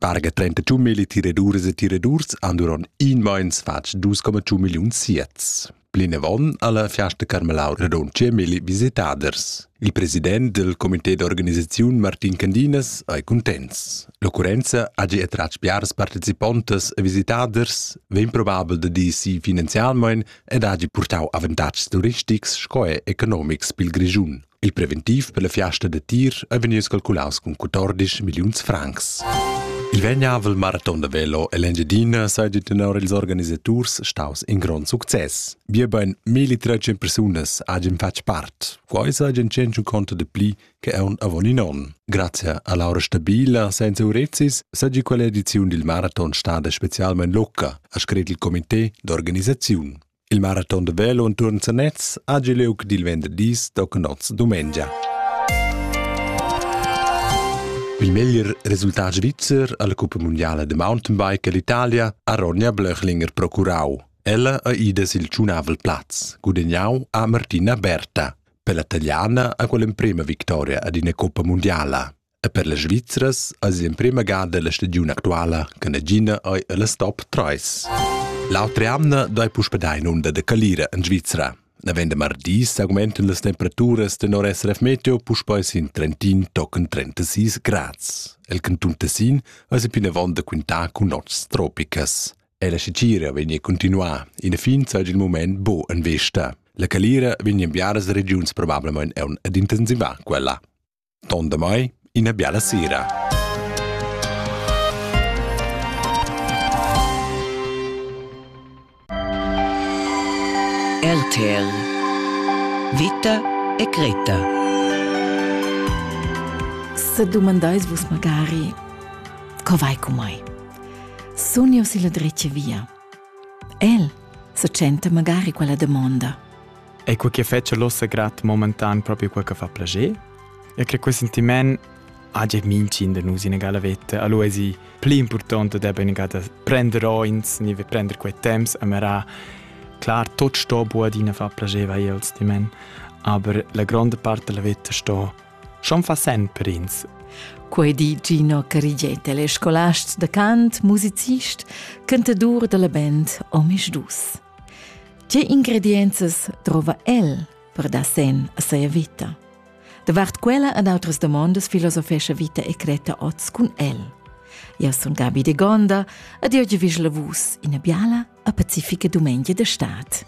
Parga 32 mili tiradurs e tiradurs han durant in meins fatg 2,2 milliun siets. Plinavon ha la Fiasta Carmelau radund 10 mili visitaders. Il president del comité d'organisaziun Martin Candinas ei contents. L'occurrenza hagi attratg biars participontas e visitaders, vegn probabel da dir si finanzialmein ed hagi purtau avantatgs turistics sco e economics pil Grischun. Il preventiv per la fiasta da tir è vegnius calculaus cun 14 milliuns francs. Il vegnavel maraton da veloell'Engiadina seigi tenor ils organisaturs staus in grond success. Biebein 1300 persunas hagien fatg part. Quei seigi tschentun conto de pli che aun avon in onn. Grazie a Laura Stabila senza Urezis seigi quella ediziun dil maraton stada specialmein locca, ha scret il comité d'organisaziun. Il maraton da velo enturn Sanez ha giu liug dil venderdis tochen oz dumengia. Il meglier resultat svizzer alla Cuppa mondiale de mountainbike all'Italia ha Ronja Blöchlinger procurau. Ella ha ida sil tschunavel plaz, gudegnau a Martina Berta. Per la taliana ha quella emprema victoria ad ina Coppa mondiala. E per las Svizras eis l'emprema gada la stagiun actuala che nagina ei ella stop 3. L'autra jamna dai puspe dai inunda de calira en Svizra. Navend de mardi s'augmentan las temperaturas tenor SRF Meteo puspei sin Trentin tochen 36 grads. El canton Tessin eis plinavon da quintar cun nots tropicas. E la scicira vegni continuar. In fin sei il moment bo en vesta. La calira vegni enviadas a regiuns probablemente un ad intensivar quella. Ton damai ina biala sera. RTL Vita e Greta Se domandais vus magari co vai cu mai? Sun io si la dretga via? El se tschenta magari quella demonda. E quei che fetscha l'ossa grat momentan proprio quel che fa plager. E credo quel sentiment hagi mincin de nus in egala vetta. Allora è pli importante de ben gata prender oins, ni prender quei temps a mera Klar, tot sto buadina fa placeva els di men, aber la grande parte della vita sto schon fa sen per ins. Quei di Gino Carigiete, le scolast de cant, musicist, cantadur della band Omis Dus. Tge ingredienzas drova el per dar sen a seia vita? Davart quella ed outras domondas filosofescha Vita e Creta oz cun el. Eu sun Gabi de Gonda ed eu vi lavus ina biala a pacifica dumengia de stad.